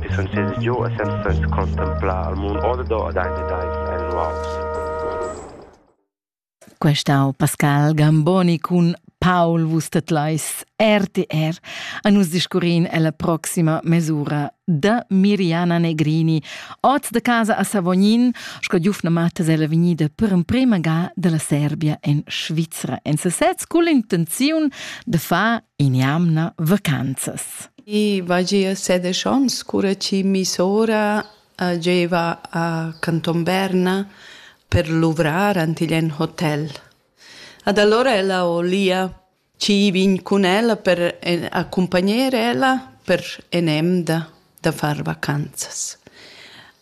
E sun sez giò e senza sainza contemplar al muond ordo ed aint ed ais annuals. Questa ho Pascal Gamboni cun Paul vus tedlais RTR a nus discurrin alla proxima mesura da Miriana Negrini, oz de casa a Savognin, sco giufna matas ella vegnida per emprema ga della Serbia in Svizzera. En sesez cun l'intenziun de far in'jamna vacanzas. I vagia sedisch onns, cura chi mi sora uh, gieva a Canton Berna per luvrar antigl en hotel. Ad allora ella olia ci vin cun ella per en- accompagner ella per en emda da far vacanzas.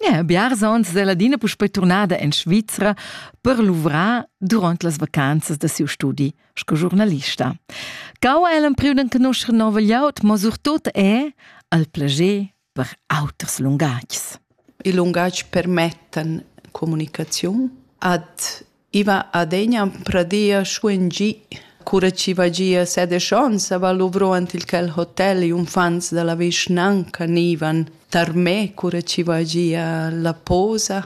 Yeah, biars onns è l'adina puspei turnada en Svizra per luvrar durant las vacanzas da siu studi sco giornalista. Cau è l'empriu d'enconoscer nova gliaut, ma surtut è al plager per auters lungatgs. I lungatgs permettan comunicaziun ad I va adegna pradia schuen gi, cura chi va gia set e schons a va luvro ant il quel hotel i unfants da la vischnanca nivan tar me cura chi va gia la posa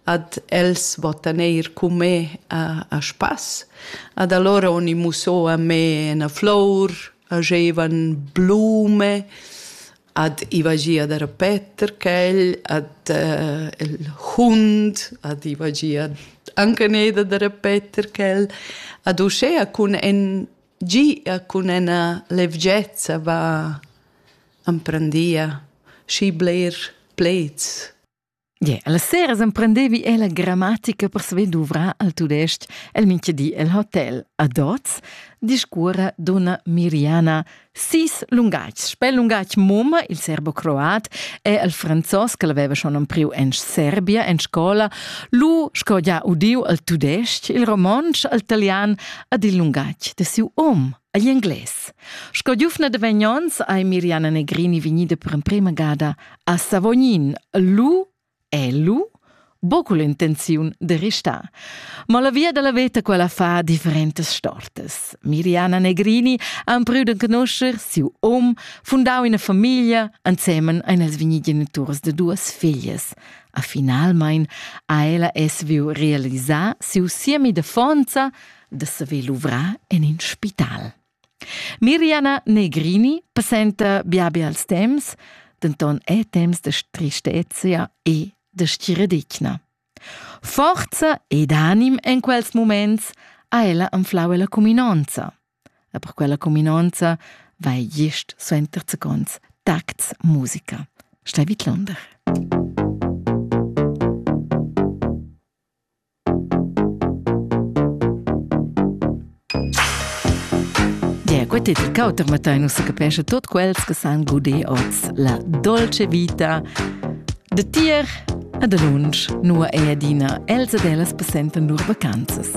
ad els vottan eir cun me a, a spass. Ad allora uni muso a me 'na flour, hagevan blume, ad iva gia da repeter quel, ad uh, il hund, ad iva gia anche neda da repeter quel, ad uschea cun en gia cun ena levgezza va amprendia schi bler pleds Yeah, alla sera emprendevi ella grammatica per saver duvrar al tudesc el minchedi el hotel. A Dots discuora donna Miriana sis lungatgs. Spel lungatg mumma, il serbo-croat, e al franzos che l'aveva schon empriu en Serbia en scola, lu sco già udiu al tudesc, il romontsch, al italian ad il lungatg de siu om, agli inglés. Sco giufna de Vegnons hai Miriana Negrini vegnida per emprema gada A Savognin lu è lu buca l'intenziun de restar. Ma la via dalla veta quella fa differentas stortas. Miriana Negrini ha emprüt de conoscer siu om, fundau ina famiglia ensemen ein els vigni geniturs de duas figlias. A finalmein ha ella es viu realisar siu siemi de fonza de saver luvrar en in spital. Mirjana Negrini presenta Biabi als temps, denton è temps de tristezia e de stiredigna. Forza ed anim en quels moments ha ella anflau la cuminonza. E per quella cuminonza vai gist suenter seconds Tax Musica. Stai vid Londra. Quetetel cauter mattain ussa capescha tot quels che san guder oz la dolce vita de tier ad lunsch nua ei adina els ed ellas passentan lur vacanzas.